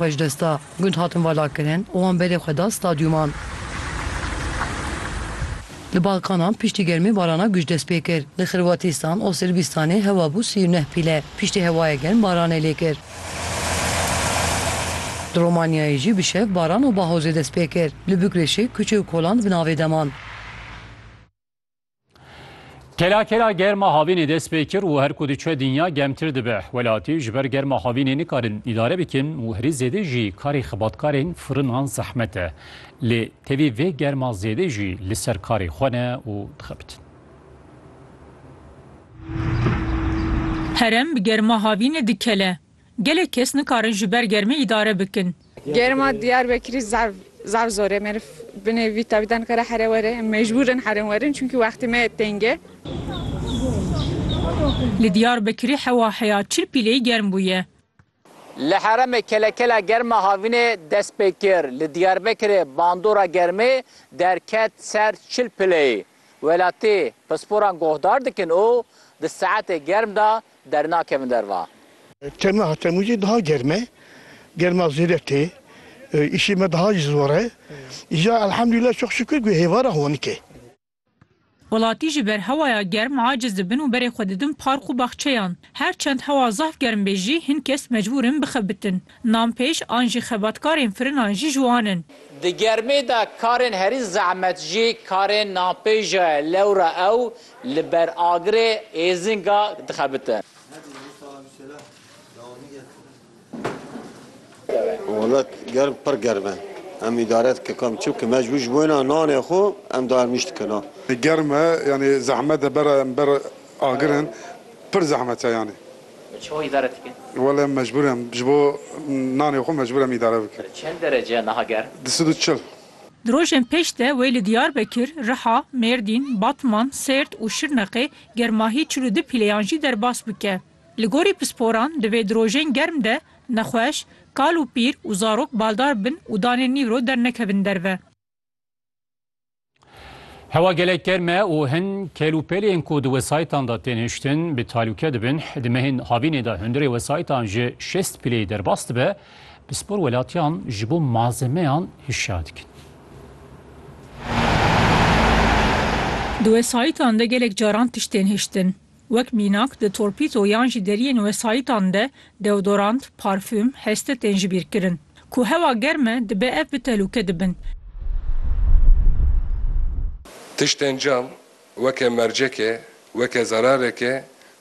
Xwe ji desta gund hatin valakirin û wan berê xwe da stadyûman. Li Balkanan piştî germê barana guj dest pê kir. Li Xirwatîstan û Sirbistanê hewa bû sî û neh pîle. Piştî hewayê germ baranê lê kir. Li Romanyayê jî bi şev baran û bahozê dest pê kir. Li Bûkreşê kuçe û kolan bi navê de man. Kela kela germa havînê dest pê kir û her ku diçe dinya gemtir dibe. Welatî ji ber germa havînê nikarin îdare bikin û herî zêde jî karê xebatkarên firinan zehmet e. Lê tevî vê germa zêde jî li ser karê xwe ne û dixebitin. Herem bi germa havînê dikele. Gelek kes nikarin ji ber germê îdare bikin. Germa Diyarbekirî zaf zaf zor e. Meriv binê vî tevî de nikare here were. Em mecbûr in herin werin çunkî wextê me têng e. Li Diyarbekirî hewa heya çil pîleyî germ bûye. Li herêmê kelekela germ a havînê dest pê kir. Li Diyarbekirê bandora germê derket ser çil pileyî. Welatî pisporan guhdar dikin û di saetê germ de Dernakevin derva. Tema Temûzê daha germ e, germa zêde tê, îşê me daha jî zor e. Îja elhemdulîla çok şukir ku hêvara honik e. Welatî ji ber hewaya germ aciz dibin û berê xwe didin park û baxçeyan. Her çend hewa zaf germ bê jî hin kes mecbûr in bixebitin. Nanpêj an jî xebatkarên firinan jî ji wan in. Di germê de karên herî zehmet jî karên nanpêja ye lewra ew Li ber agirê êzinga dixebite. Welat germ pir germ e. Em îdare dike kam çimke me ji wi ji wêna nanê xwe em dayem nîş dikin a. Germ e yanî zehmet e bera em ber agirin pir zehmet e yanî. Çawa îdare dikin? Wela em mecbûr em ji bo nanê xwe mecbûr em îdare bikin. Çend derece niha germ? Di sed û çil. Di rojên pêş de wê li Diyarbekir, Riha, Mêrdîn, Batman, Sêrt û Şirnexê germahî çil û du pîleyan jî derbas bike. Li gorî pisporan divê di rojên germ de nexweş, kal û pîr û zarok baldar bin û danê nîvro dernekevin derve. Hewa gelek germ e û hin kêlûpêlên ku di wesayîtan de tên hiştin bi talûke dibin. Di mehên havînê de hundirê wesayîtan ji şêst pîleyê derbas dibe Pispor welatiyan ji bo malzemeyan hişyar dikin. Di wesayîtan de gelek caran tiştên hiştin, wek mînak di torpîto yan jî deriyên wesayîtan de deodorant, parfum, heste tên jibîrkirin. Ku hewa germ e dibe ev bi telûke dibin. Tiştên cam weke merceke, weke zarareke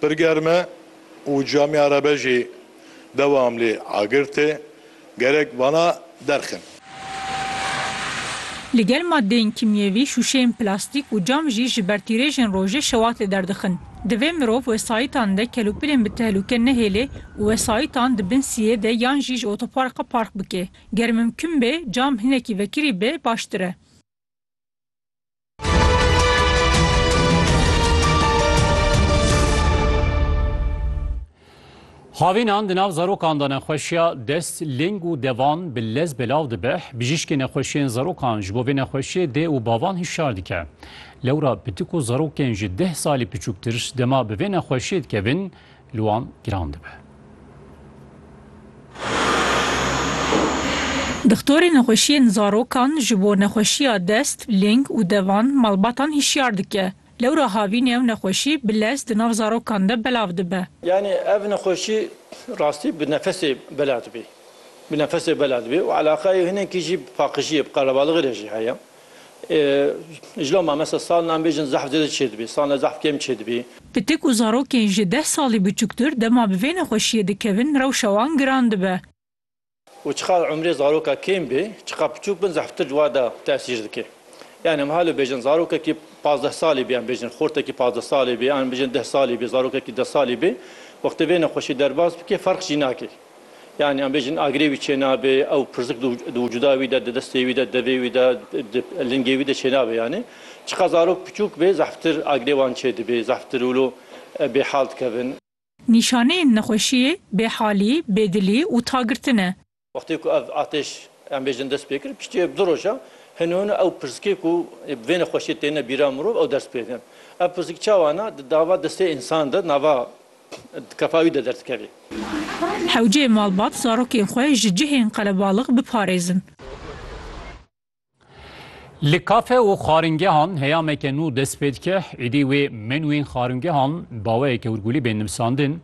Pir germ e û Camî Erebe jî dewam lê agir tê. Gerek vana derxin. Li gel madeyên kîmyevî, şûşeyên plastîk û cam jî ji ber tîrêjên rojê şewat li der dixin. Divê mirov wesayîtan de kelûpilên bi tehlûke nehêlê û wesayîtan di bin siyê de yan jî ji otoparka park bike. Ger mimkun bê cam hinekî vekirî be baştir e. Havînan di nav zarokan de nexweşiya dest, lêng û devan bi lez belav dibe. Bijîşkê nexweşiyên zarokan ji bo vê nexweşiyê dê û bavan hişyar dike. Lewra pitik û zarokên ji deh salî piçûktir dema bi vê nexweşiyê dikevin, li wan giran dibe. Dixtorê nexweşiyên zarokan ji bo nexweşiya dest, ling û devan malbatan hişyar dike. Lewra havîn ew nexweşî bi lez di nav zarokan de belav dibe. Yanî ev nexweşî rastî bi nefesê bela dibî. Bi nefesê bela dibî û eleqeyê hinekî jî bi paqijiyê, bi qelebalixê re jî heye. Ji loma mesa salna em bêjin zehf zêde çêdibî, salna zehf kêm çêdibî. Pitik û zarokên ji deh salî biçûktir dema bi vê nexweşiyê dikevin rewşa wan giran dibe. Û çiqas umrê zaroka kêm bê, çiqas piçûk bin zehftir ji wada tesîr dike. Yanî em halo bêjin zarokekî pazdeh salî bê, em bêjin xortekî pazdeh salî bê, em bêjin deh salî bê, zarokekî deh salî bê wextê vê nexweşiyê derbas bike ferq jî nake. Yanî em bêjin agirê wî çênabe, ew pirsik di wicûda wî de, di destê wî de, devê wî de, di lingê wî de çênabe yanî. Çiqas zarok piçûk bê zehftir agirê wan çêdibe, zehftir wilo bêhal dikevin. Nîşaneyên nexweşiyê bêhalî, bêdilî û tagirtin e. Wextê ku ev ateş em bêjin dest pê kir, piştî du roja hino hino ew pirsikê ku bi vê nexweşiyê têne bîra mirov ew ders pê din. Ev pirsik çawa ne? Di dava destê însan de, nava Di kefa wî de derdikeve. Hewceyê malbat zarokên xwe ji cihên qelebalix biparêzin. Li kafe û xwaringehan heyameke nû dest pê dike, êdî wê menûyên xwaringehan baweyeke hûrgûlî bên nivisandin.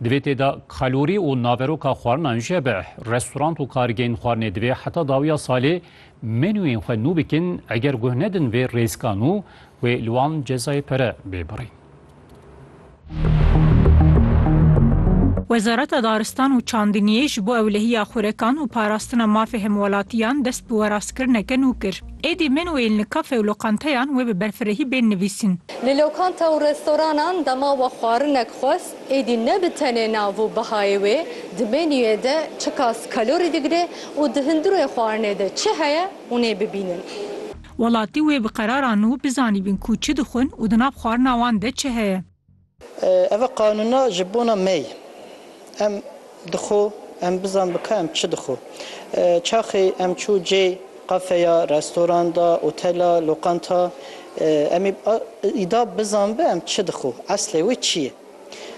Di vê tê de kalorî û naveroka xwarinan jî hebe. Restorant û kargehên xwarinê divê heta dawiya salê menûyên xwe nû bikin, eger guh nedin vê rêzika nû wê li wan cezayê pere bê birîn. Wezareta Daristan û Çandiniyê ji bo ewlehiya xurekan û parastina mafê hemwelatiyan dest bi werastkirineke nû kir. Êdî min û êlin li kafe û loqanteyan wê bi berfirehî bên nivîsîn. Li lokanta û restoranan dema we xwarinek xwest êdî ne bi tenê nav û bihayê wê, di menûyê de çiqas kalorî digire û di hundirê xwarinê de çi heye hûn ê bibînin. Welatî wê bi qeraran û bizanîbin ku çi dixwin û di nav xwarina wan de çi heye. Ev e qanûna ji bona me ye. Em dixwe em bizan bi ka em çi dixwe. Çaxê em çû cê, qafeya, restoranda, otela, loqanta, em ê îda bizan bi em çi dixwe, eslê wê çi ye.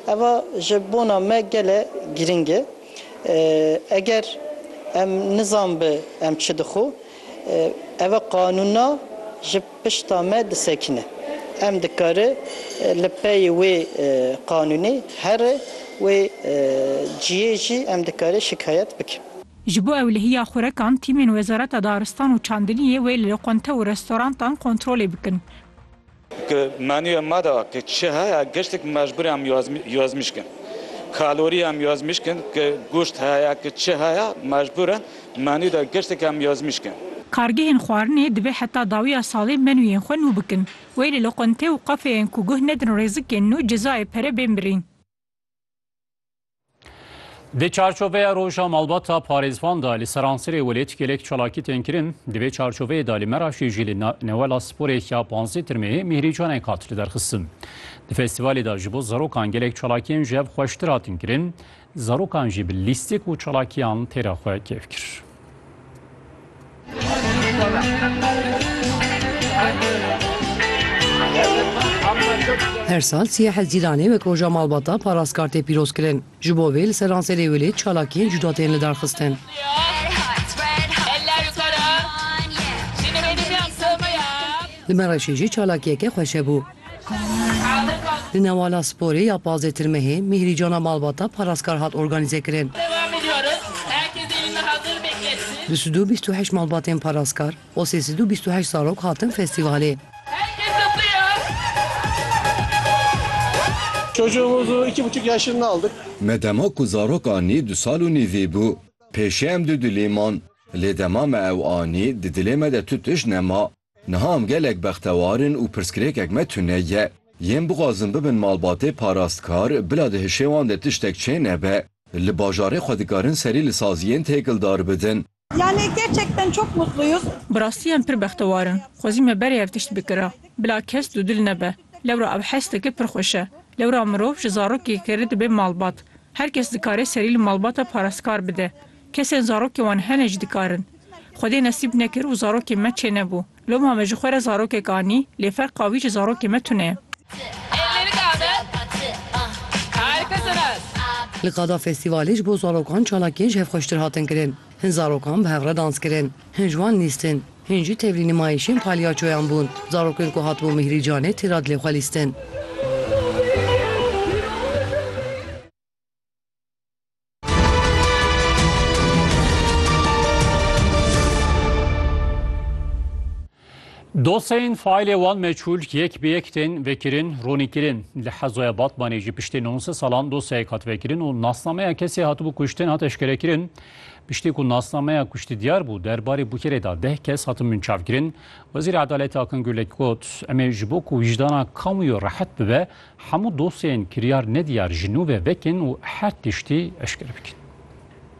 Eva ji bona me gele girîng e. Eger em nizanbi em çi dixwe, eva qanûna ji pişta me disekine. Em dikare li peyê wê qanûnê here wê ciyê jî em dikare şikayet bikin. Ji bo ewlehiya xurekan, tîmên Wezareta Daristan û Çandiliyê wê li loqente û restorantan kontrolê bikin. Ke menûya me de ke çi heye giştîk mecbûr em yazmîş kin. Kalorî em yazmîş kin ke goşt heye ke çi heye mecbûr in menû de giştîk em yazmîş kin. Kargehên xwarinê divê heta dawiya salê menûyên xwe nû bikin. Weylê li qontê û qafeyên ku guh nedin rêzikên nû cezayê pere bên birîn. Di çarçoveya roja malbata parêzvan da li Seransirê welêt gelek çalakî tên kirin. Di vê çarçoveyê da li Meraşê jî li newela sporê ya panzdeh tirmeyê mîhrîcanek hat li derxistin. Di festîvalê da ji bo zarokan gelek çalakiyên ji hev xweştir hatin kirin. Zarokan jî bi lîstik û çalakiyan têra xwe kêf kir. Her sal siyê Hezîranê wek roja malbata parastkar tê pîrozkirin. Ji bo vê li ser ranserê Wêlê çalakiyên cuda tên lidarxistin. Li Mereşê jî çalakiyeke xweşe bû. Di Newala Sporê ya pazdeh Tirmehê mîhrîcana malbata parastkar hat organîzekirin. Du sed û bîst û heşt malbatên parastkar û sê sed û bîst û heşt zarok hatin festîvalê. Me dema ku zarok anî du sal û nîvî bû. Pêşê em du dulî man. Lê dema me ew anî di dilê me de tu tişt nema. Niha em gelek bextewar in û pirsgirêkek me tune ye. Yên bixwazin bibin malbatê parastkar, bila di hişê wan de tiştek çê nebe. Li bajarê xwe dikarin serî li saziyên têkildar bidin. Yani gerçekten çok mutluyuz. Bi rastî em pir bextewar in. Xwezî me berê ev tişt bikira. Bila kes dûdil nebe. Lewra ev hesteke pir xweş e. Lewra mirov ji zarokê keri dibe malbat. Her kes dikare serî li malbata parastkar bide. Kesên zarokên wan hene jî dikarin. Xwedê nesîb nekir û zarokên me çênebû. Loma me ji xwe re zarokek anî, lê ferqa wî ji zarokên me tune ye. Li qada festîvalê ji bo zarokan çalakiyên ji hev xweştir hatin kirin. Hin zarokan bi hev re dans kirin. Hin ji wan lîstin. Hin jî tevlî nimayîşên palyaçoyan bûn. Zarokên ku hatibûn Mîhrî Canê tê ra dilê xwe lîstin. Dosyayên faîlê wan meçûl yek bi yek tên vekirin, ronî kirin. Li Hezoya Batmanê jî piştî nonse salan dosyayek hat vekirin û nasnameya kesê hatibû kuştin hat eşkerekirin. Piştî ku nasnameya kuştî diyar bû, derbarê bûkerê da deh kes hatin munçavkirin. Wezîrê Edaletê Akın Gürlek got, Em ê ji bo ku wîjdana kamûyê rehet bibe, Hemû dosyeyên kiryar nediyar ji nû ve vekin û her tiştî eşkere bikin.